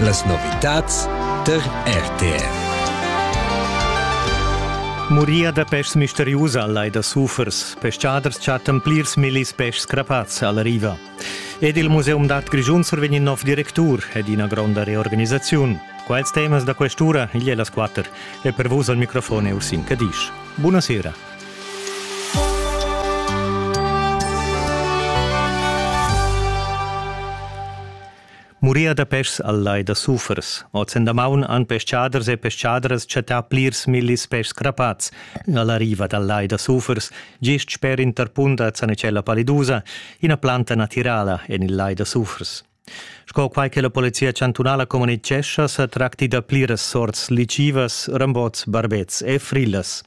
Las novitads tar RTR. Muria da peschs misteriusa al lai da Sufers. Peschaders chattan plirs millis peschs crapats alla riva. Ed il Museum d'art Grischun survegn in nov directur ed ina gronda reorganisaziun. Quels temas da quest'ura igl è las quatter e per vus al microfon è Ursin Cadisch. Buonasera. Muria da peschs al lai da Sufers. Ozen maun han peschaders e peschadras chattà plirs millis peschs crapats alla riva dal lai da Sufers, gist sper in tarpun da Zanecella palidusa, ina planta natirala en il lai da Sufers. Sco quai che la polizia chantunala communitgescha, sa tracti da pliras sorts lichivas, rambots, barbets e frillas.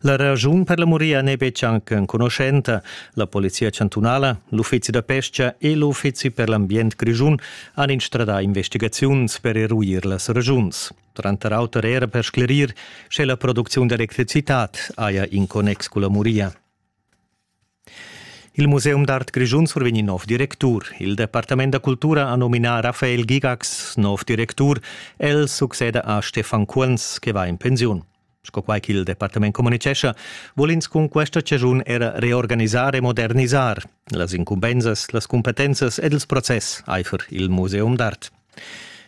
La ragiun per la muria n'è betg anc enconuschenta. La polizia chantunala, l'uffizi da pesca e l'uffizi per l'ambient grischun han instradà investigaziuns per eruir las ragiuns. Tranter auter era per sclerir, sche la producziun d'electricitad haja in connex cun la muria. Il Museum d'art grischun survegn in nov directur. Il departament da cultura ha nominà Raphael Gigax nov directur. El succeda a Stefan Kuenz, che va in pensiun. Sco quai ch'il departament communitgescha, vul ins cun questa chaschun era reorganisar e modernisar las incumbensas, las cumpetenzas ed ils process aifer il museum d'art.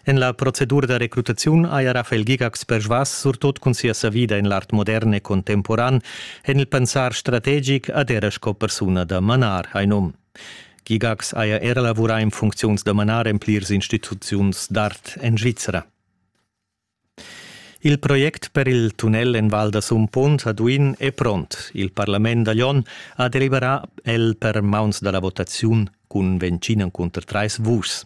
En la procedura da recrutaziun haja Rafael Gigax persvas surtot cun sia savida en l'art modern e contemporan. En il pensar strategic ad era sco persuna da manar, hai num. Gigax haja era lavurà en funcziuns da manar en plirs instituziuns d'art en Svizra. Il project per il tunnel en Val da Sumpont a Duin è pront. Il parlament da Glion ha deliberà el per mauns da la votaziun cun ventschin cunter trais vuschs.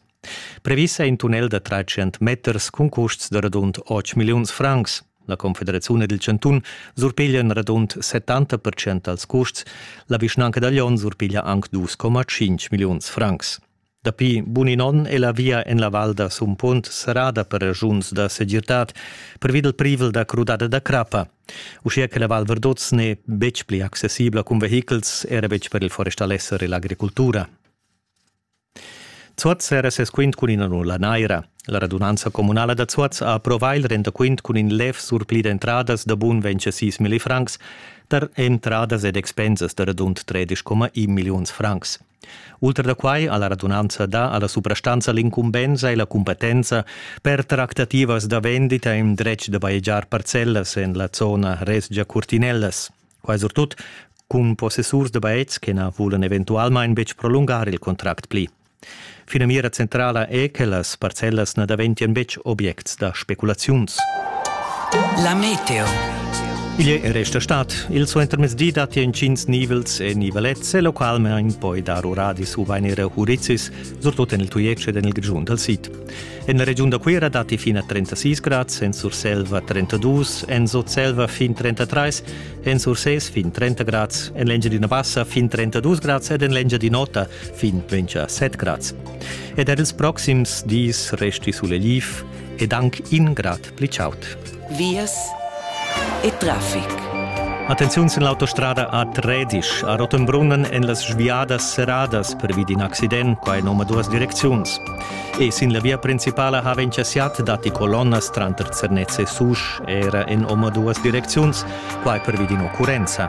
Previs è in tunnel da 300 meters cun custs da radund 8 milliuns francs. La Confederaziun ed il Chantun surpiglian radund 70% dals custs. La vischnanca da Glion surpiglia anc 2,5 milliuns francs. Dapi bun in onn è la via en la val da Sumpont serrada per raschuns da segirtad pervi dal privel da crudada da crappa. Uschia che la Val Verdoz n'è betg pli accessibla cun vehichels, era betg per il forestalesser e l'agricultura. Zuoz era ses quint cun ina nulla naira. La radunanza communala da Zuoz ha approvà il rendaquint cun in lev surpli d'entradas da bun 26 milli francs tar entradas ed expensas da radund 13,1 milliuns francs. Ultra da quai ha la radunanza dà a la suprastanza l'incumbensa e la cumpetenza per tractativas da vendita in dretg da bajegiar parcellas en la zona resgia Curtinellas. Quai surtut cun possessurs da bajetgs che na vulan eventualmain betg prolungar il contract pli. Finamira centrala è che las parcellas na daventien betg objects da speculaziuns. La meteo. Igl è resta stat. Il suentermezdi datti entgins nivels e nivelets e localmain poi dar uradis u vain era hurizis, surtut en il Tujetsch ed en il Grischun dal sid. En la regiun da Cuira datti fin a 36 grads, en Surselva 32, en Sutselva fin 33, en Sursés fin 30 grads, en l'Engiadina Bassa fin 32 grads ed en l'Engiadin'Ota fin 27 grads. Ed er ils proxims dis resti suleliv ed anc in grad pli chaud. Vias e traffic. Attenziun sin l'autostrada a Tredisch a Rottenbrunnen en las sviadas serradas pervi d'in accident qua en omaduas direcziuns. E sin la via principala ha encasiat datti colonnas tranter Zernez e Susch, era en omaduas direcziuns, quai pervi d'in occurrenza.